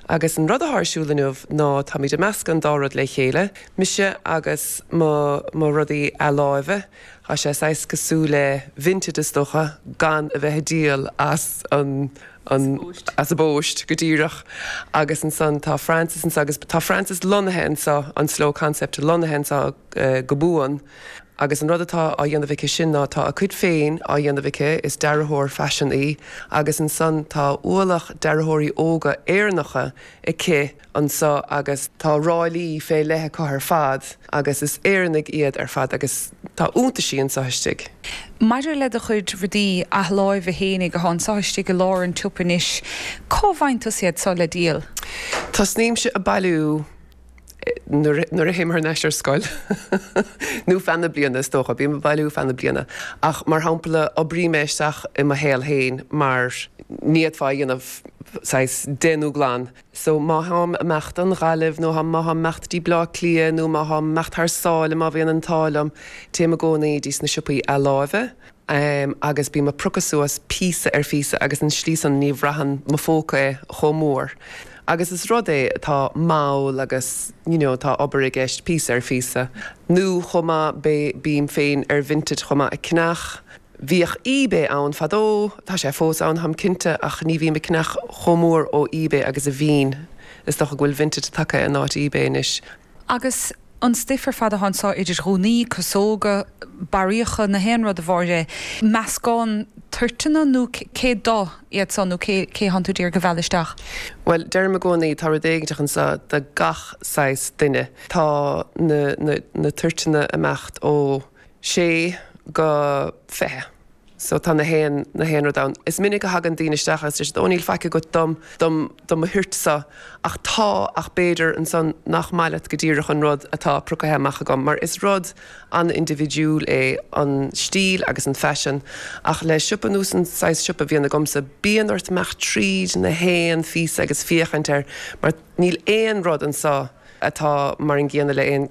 Agus an rud atá ar siúl inniu ná táimid ag meascadh an dá rud le chéile, mise agus mo, mo rudaí athláimhe. Tá sé saghas cosúil le Vinted is dócha, gan a bheith ag díol as an, an, as an bpost, go díreach. Agus ansan tá Francis anseo agus tá Francis lonnaithe anseo, an Slow Concept lonnaithe anseo go buan. Agus an rud atá á dhéanamh aici sin ná tá a cuid féin á dhéanamh aici, is dearthóir faisin í, agus ansan tá ualach dearthóirí óga Éireannacha aici anso agus tá ráillí fé leith acu ar fad agus is Éireannaigh iad ar fad agus tá iontaisí anso istigh. Maidir le do chuid rudaí athláimhe fhéinig atá anso istigh i lár an tsiopa anois, cá bhfaigheann tusa iad so le díol? Tosnaímse ag bailiú. nuair a théim thar n-ais ar scoil, nó feadh na bliana is dócha, bím ag bailiú feadh na bliana, ach mar shampla oibrím é isteach i mo shaol féin mar ní fhéadfá é a dhéanamh saghas déanamh glan, so má táim ag imeacht don Ghaillimh nó má táim ag imeacht dtí Bleá Cliath nó má táim ag imeacht thar sáile má bhíonn an t-ádh liom, téim i gcónaí dtí sna siopaí athláimhe em agus bím a' priocadh suas píosa ar phíosa agus an tslí san ní bhraitheann mo phóca é chomh mór agus is rud é atá mall agus you know tá obair i gceist píosa ar phíosa nó chomh maith bé bím féin ar Vinted chomh maith a' ceannach bhíodh eBay ann fadó tá sé fós ann táim cinnte ach ní bhím a' ceannach chomh mór ó eBay agus a bhínn is dócha go bhfuil Vinted tagtha in áit eBay anois Agus an stuif ar fad atá anso idir ghúnaí, casóga, barraíocha, 'na haon rud ab áil leat é, meascán toirteanna nó cé dó iad so nó cé cé atánn tú d'iarraidh a mhealladh isteach? Bhuel, deirim i gcónaí tá rud éiginteach anso do gach saghas duine. Tá na na na toirteanna ag imeacht ó sé go fiche. so tá na haon, na haon rud ann. Is minic a thagann daoine isteach agus deir siad oh níl faic agat dom, dom, do mo thoirtse, ach tá, ach b'fhéidir ansan nach maith leat go díreach an rud atá priocaithe amach agam, mar is rud an-indibhidiúil é an stíl agus an faisean, ach le siopa nós an saghas siopa bhíonn agamsa, bíonn ort imeacht tríd na haon phíosa agus féachaint air, mar níl aon rud anso, atá mar an gcéanna le aon,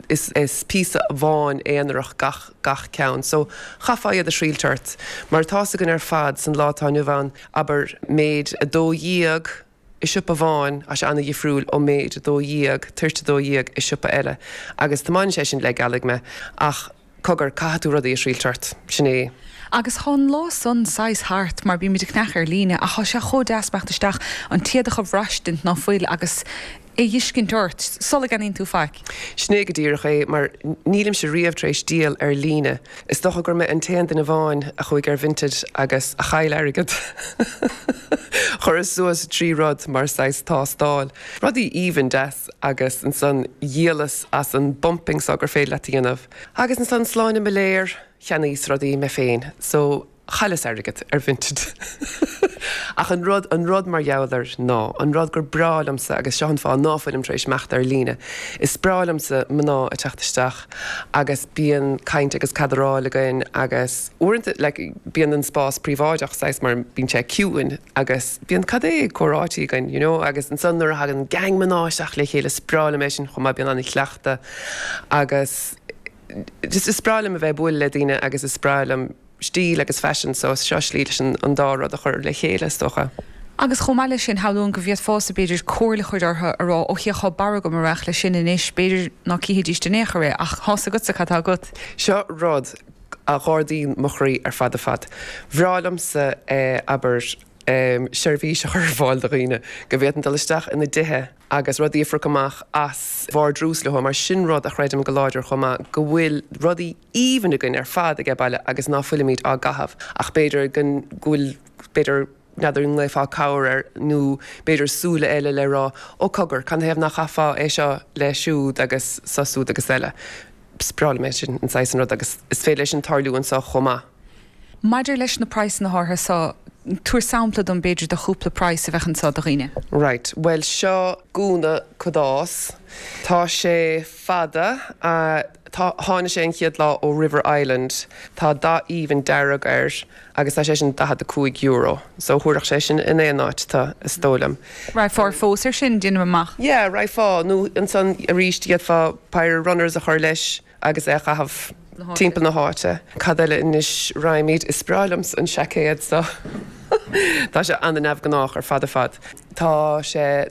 is píosa amháin aonarach gach ceann, so caithfir iad a thriailt ort. Mar atá's againn ar fad san lá atá inniu ann, abair méid 12 i siopa amháin, tá sé an-dhifriúil ó méid 12, toirt 12, i siopa eile. Agus tiomáineann sé sin le gealaigh mé, ach. Cogar, caithfidh tú rudaí a thriail ort. Sin é. Agus thá an lá san saghas thart, mar bímid ag ceannach ar líne, ach thá sé chomh deas imeacht isteach an t-éadach a bhraistint ná fuil agus é dh'fhiscint ort sula gceannaíonn tú faic. Sin é go díreach é, mar nílimse riamh tar éis díol ar líne. Is dócha gur mé an t-aon duine amháin a chuaigh ar Vinted agus a chaill airgead. Chuireas suas trí rud mar saghas tástáil. Rudaí aoibhne deasa. Agus ansan dhíolas as an bpumping so gur féidir leat a dhéanamh. Agus ansan slán mo léir, cheannaíos rudaí mé féin. So, chailleas airgead ar Vinted. Ach an rud, an rud mar gheall air ná, an rud gur breá liomsa, agus seo an fáth ná fuilim tar éis imeacht ar líne, is breá liomsa mná ag teacht isteach agus bíonn caint agus cadaráil againn agus uaireanta like bíonn an spás príobháideach saghas mar bíonn sé ciúin agus bíonn an-chomhráití againn you know agus ansan nuair a thagann gang mná isteach le chéile is breá liom é sin chomh maith bíonn an-chuileachta agus just is breá liom a bheith ag bualadh le daoine agus is breá liom stíl agus fashion so seo slí leis an dá rud a chur le chéile is dócha. Agus chomh maith leis sin shamhlóinn go bhféadfása b'fhéidir comhairle a chur orthu a rá ok tá barr agam a raghadh leis sin anois b'fhéidir ná cífidís in aon chor é ach tá a fhios agatsa cad tá agat. Seo rud a dh'ardódh mo chroí ar fad ar fad. Bhreá liomsa é a dhéanamh, abair, seirbhís a chur ar fáil do dhaoine go bhféadfainn dul isteach ina dtithe agus rudaí a phiocadh amach as vardrús leo, mar sin rud a chreidim go láidir chomh maith go bhfuil rudaí aoibhne againn ar fad aige baile agus ná fuilimid á gcaitheamh ach b'fhéidir go bhfuil b'fhéidir n'fheadar an nglaofá cabhair air nó b'fhéidir súile eile le rá ó cogar canathaobh ná caithfeá é seo le siúd agus seo siúd agus eile is breá liom é sin an saghas san rud agus is féidir leis sin tarlú anso chomh maith. Maidir leis na praghsanna a Shorcha so, tabhair sampla dom b'fhéidir de chúpla praghas a bheadh anso do dhaoine. Right, bhuel seo gúna cadáis. Tá sé fada, tá, tháinig sé an chéad lá ó River Island. Tá dath aoibhinn dearg air agus tá sé sin €45. So thabharfadh sé sin in aon áit tú, is dóigh liom. Raghfá ar phósadh ar sin, déanaim amach? Yeah, raghfá, nó ansan arís d'fhéadfá pair of runners a chur leis. agus é a chaitheamh timpeall na háite. Cad eile anois raghaimid, is breá liomsa an seaicéad seo. Tá sé an-neamhghnách ar fad ar fad. Tá sé.